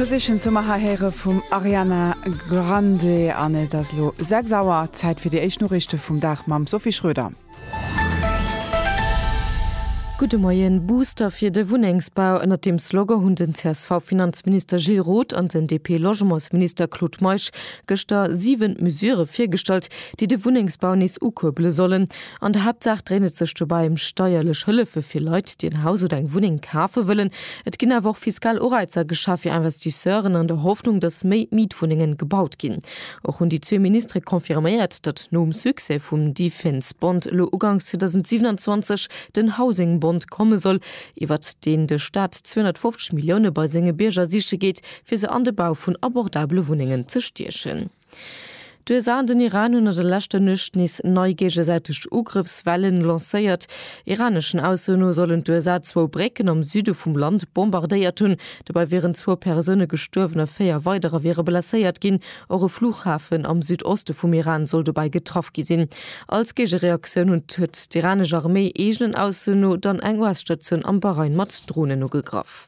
Position soumer hei héiere vum Ariana Grande an et ass elo 6 Auer, Zäit fir déi éischt Noriichte vum Dag mam Sophie Schröder. Gudde Moien, Booster fir de Wunnengsbau, Ënnert deem Slogan hunn den CSV-Finanzminister Gilles Roth an den DP-Logementsminister Claude Meisch gëschter 7 Mesurë virgestallt, déi de Wunnengsbau nees ukuerbele sollen. An der Haaptsaach dréint et sech dobäi ëm steierlech Hëllefe fir Leit, déi en Haus oder eng Wunneng kafe wëllen. Et ginn awer och fiskal Ureizer geschaff fir Investisseuren an der Hoffnung, datt méi Mietwunnengen gebaut ginn. Och hunn déi zwee Ministere confirméiert, datt nom Succès vum Defense Bond elo uganks 2027 den Housing Bond komme soll, iwwert deen de Staat 250 Millioune bei senge Bierger siche geet, fir se an de Bau vun abordabele Wunnengen ze stiechen. D'USA an den Iran hunn an de leschter Nuecht nees nei géigesäiteg Ugrëffswelle lancéiert. Iraneschen Aussoen no sollen d'USA zwou Brécken am Süde vum Land bombardéiert hunn. Dobäi wieren zwou Persoune gestuerwen a véier weiderer wiere blesséiert ginn. Och e Flughafen am Südoste vum Iran soll dobäi getraff gi sinn. Als Géigereaktioun hunn huet d'iranesch Arméi, eegenen Aussoen no, dann eng US-Statioun am Bahrain mat Dronen ugegraff.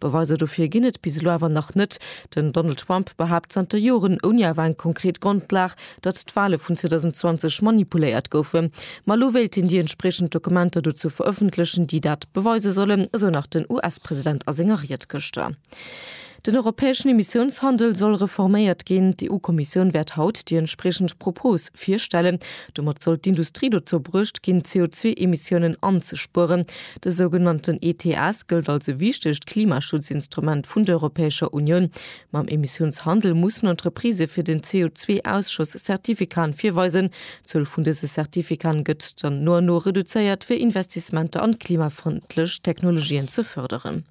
Beweiser dofir ginn et bis elo awer nach net. Den Donald Trump behaapt zanter Joren, ouni awer eng konkret Grondlag, datt d'Wale vun 2020 manipuléiert goufen. Ma elo wéilt hien déi entspriechend Dokumenter dozou verëffentlechen, déi dat beweise sollen, esou nach den US-President a senger Ried gëschter. Den europäeschen Emissiounshandel soll reforméiert ginn. D'EU-Kommissioun wäert haut déi entspriechend Propose virstellen. Domat soll d'Industrie dozou bruecht ginn, d'CO2-Emissiounen anzespueren. De sougenannten ETS gëllt als e wichtegt Klimaschutzinstrument vun der Europäescher Unioun. Mam Emissiounshandel mussen Entreprisë fir den CO2-Ausschoss Zertifikaen virweisen. D'Zuel vun dëse Zertifikaen gëtt dann no an no reduzéiert, fir Investissementer an klimafrëndlech Technologien ze fërderen.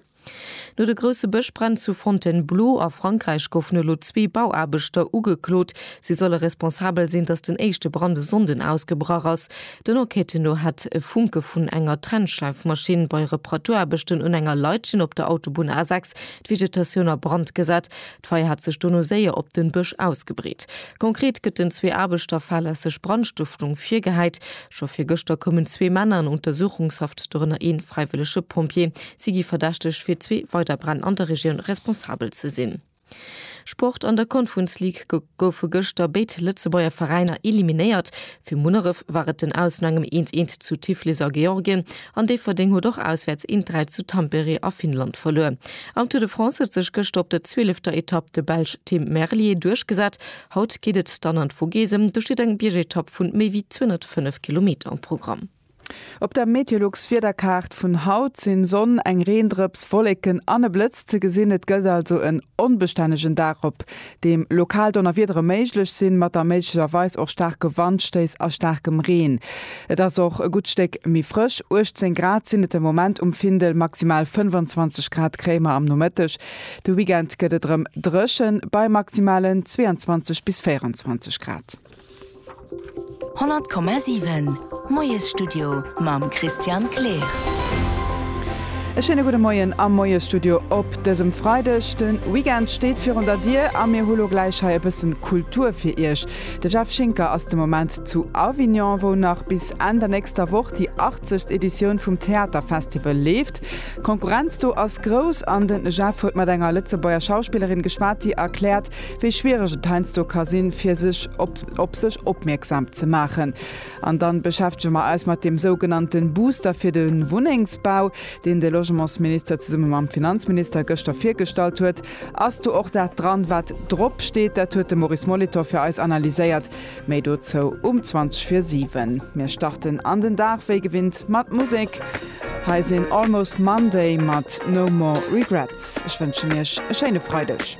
No de grousse Bëschbränn zu Fontainebleau a Frankräich goufen elo zwee Bauaarbechter ugeklot. Si solle responsabel sinn, datt den éischte Brand e Sonnden ausgebrach ass. Den Enquêten no hätt e Funke vun enger Trennschleifmaschinn bei Reparatuaarbechten un enger Leitchen op der Autobunn A6 d'Vegetatioun a Brand gesat. D'Feier hat sech dono séier op den Bësch ausgebreet. Konkret gëtt den zwee Aarbechter fahrlässeg Brandstëftung virgehäit. Scho virgëschter koumen zwee Männer an Untersuchungshaft, dorënner ee fräiwëllege Pompjee. Si gi verdächteg fir zwee weider Bränn an der Regioun responsabel ze sinn. Sport, An der Confuns League goufe gëschter béid Lëtzebuerger Veräiner eliminéiert. Fir Munneref war et den Aus no engem eens eens zu Tiflis a Georgien. An Déifferdeng huet och auswäerts een d'Räit zu Tampere a Finnland verluer. Am Tour de France huet sech gëschter op der zwielefter Etapp de Belsch Tim Merlier duerchgesat. Haut geet et dann an d'Vogesen, do steet eng Biergetapp vu méi wéi 205 Kilometer am Programm. Op der Meteolux Wiederkaart vun haut sin Sonn, eng Reendrëps, Wolleken an e Blëtz ze gesin. Et gëllt also en onbestännegen Dag op deem lokal Donnerwiedere méiglech sinn, mat da méiglecherweis och staarke Wandstéiss a staarkem Reen. Et ass och e gutt Stéck méi frësch, 18 Grad sinn et de Moment um Findel, maximal 25 Grad kréie mer am Nomëtteg. De Weekend gëtt et erëm dréchen, bei maximalen 22 bis 24 Grad. 100,7 Moiesstudio mam Christian Kleer. E schéine gudde Moien am Moiesstudio op dësem Freideg. De Weekend steet virun der Dier a mir hu lo gläich hei e bësse Kultur fir Iech. De Jeff Schinker ass de Moment zu Avignon, wou nach bis Enn der nächster Woch déi 80. Editioun vum Theaterfestival leeft. D'Konkurrenz do ass grouss an de Jeff huet mat enger Lëtzebuerger Schauspillerin geschwat, déi erkläert, wéi schwiereg et heiansdo ka sinn, fir sech op op sech opmierksam ze maachen. An dann beschäftege mer eis mat deem sougenannte Booster fir de Wunnengsbau, deen de Logementsminister zesumme mam Finanzminister gëschter virgestallt huet. Ass do och dat dran, wat drop steet? Dat huet de Maurice Molitor fir eis analyséiert. Méi dozou um 20 vir 7. Mir starten an den Dag wéi gewinnt mat Musek. Hei sinn Almost Monday mat No More Regrets. Ech wënschen Iech e schéine Freideg.